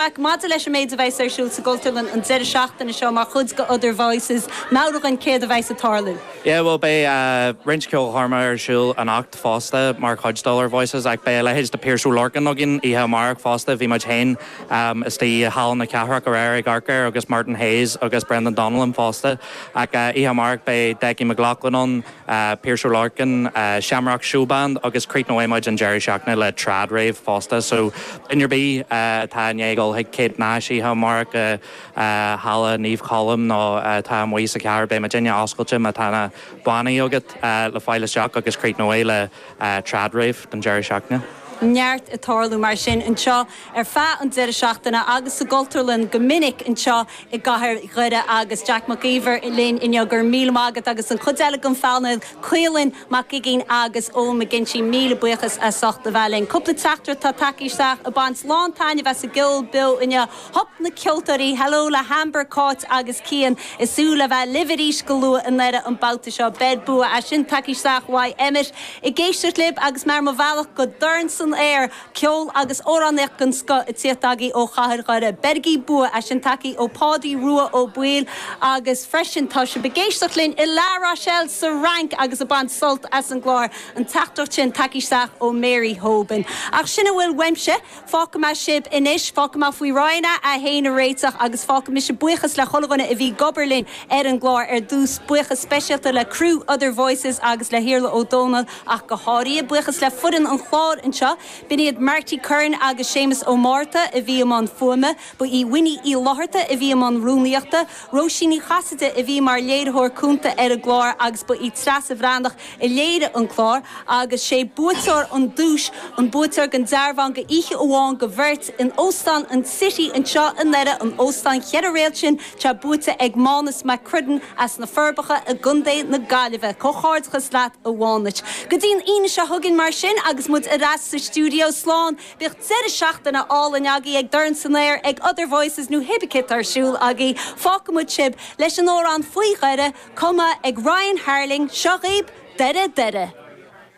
Jack, maidir leis an méid a bheas ar siúl sa gCultúrlann an deireadh seachtaine seo mar chuid de Other Voices, meabhraigh dhúinn céard a bheas ag tarlú. Yeah, bhuel beidh roinnt ceolchoirmeacha ar siúl anocht fosta mar chuid d'Other Voices ach beidh a leithéid de Piaras Ó Lorcáin againn oíche amárach fosta, bhí muid féin istigh i Halla na Cathrach aréir ag amharc air agus Martin Hayes agus Brendan Donnellan fosta ach oíche amárach beidh Decky McLaughlin ann, Piaras Ó Lorcáin, Shamrock Showband agus críochnóidh muid an deireadh seachtaine le Trad Rave fosta so duine ar bith atá i ndiaidh dul chuig Kate Nash oíche amárach i Halla Naomh Colm nó atá amuigh sa chathair beidh muidinne oscailte má tá na bannaí agat le fáil isteach agus críochnóidh le Trad Rave don deireadh seachtaine. neart ag tarlú mar sin anseo. ar feadh an deireadh seachtaine agus sa gCultúrlann go minic anseo i gcathair Dhoire agus Jack Mac Íomhair linn inniu. Go raibh míle maith agat agus an chuid eile den phainéal, Caolán Mac Uiginn agus Eoin McGinty, míle buíochas as ucht a bheith linn. Cúpla teachtaireacht atá tagtha isteach ag baint lán taitneamh as an gceol beo inniu. Hup na ceoltóirí! Hello le hAmber, Cáit agus Cian. Ag súil le bheith libh arís go luath i nDoire an babhta seo. Beir bua! É sin tagtha isteach uaidh Emmet ag éisteacht libh agus mé ar mo bhealach go Dorn San Aer! Ceol agus amhránaíocht den scoth ag tíocht agaí ó Chathair Dhoire. Beirigí bua é sin tagtha ó Pádaí Rua Ó Baoill agus freisin tá sibh ag éisteacht linn i La Rochelle sa Fhrainc agus ag baint sult as an gclár an teachtaireacht sin tagtha isteach ó Mary Hoban. Ach sin a bhfuil uaimse. Fágfaidh mé sibh anois. Fágfaidh mé faoi Roinn a 1 a réiteach agus fágfaidh mise buíochas le chuile dhuine a bhí ag obair linn ar an gclár ar dtús. Buíochas speisialta le criú Other Voices agus le hIarla Ó Dónaill. ach go háirithe. Buíochas le foireann an chláir anseo, b'in iad Marty Curran agus Séamus Ó Márta a bhí i mbun fuaime, ba í Winnie Uí Fhlátharta a bhí i mbun rúnaíochta, Róisín Ní Chasaide a bhí mar léiritheoir cúnta ar an gclár agus ba í Treasa Bhreathnach a léirigh an clár agus sé buaiteoir an duais, an buaiteoir den dearbhán do oíche amháin do bheirt in Óstán an City anseo i nDoire, an óstán cheithre réalt sin. Atá buaite ag Mánus Mac Criodain as na Forbacha i gContae na Gaillimhe. Comhghairdeachas leat a Mhánuis. Go dtí an Aoine seo chugainn mar sin agus muid ar ais sa stiúideo slán, bíodh deireadh seachtaine álainn agaí ag Dorn San Aer, ag Other Voices nó cibé céard atá ar siúl agaí. Fágfaidh muid sib leis an amhrán Faoi Dheireadh, cumtha ag Ryan Harling, Seo dhaoibh Deireadh Deireadh!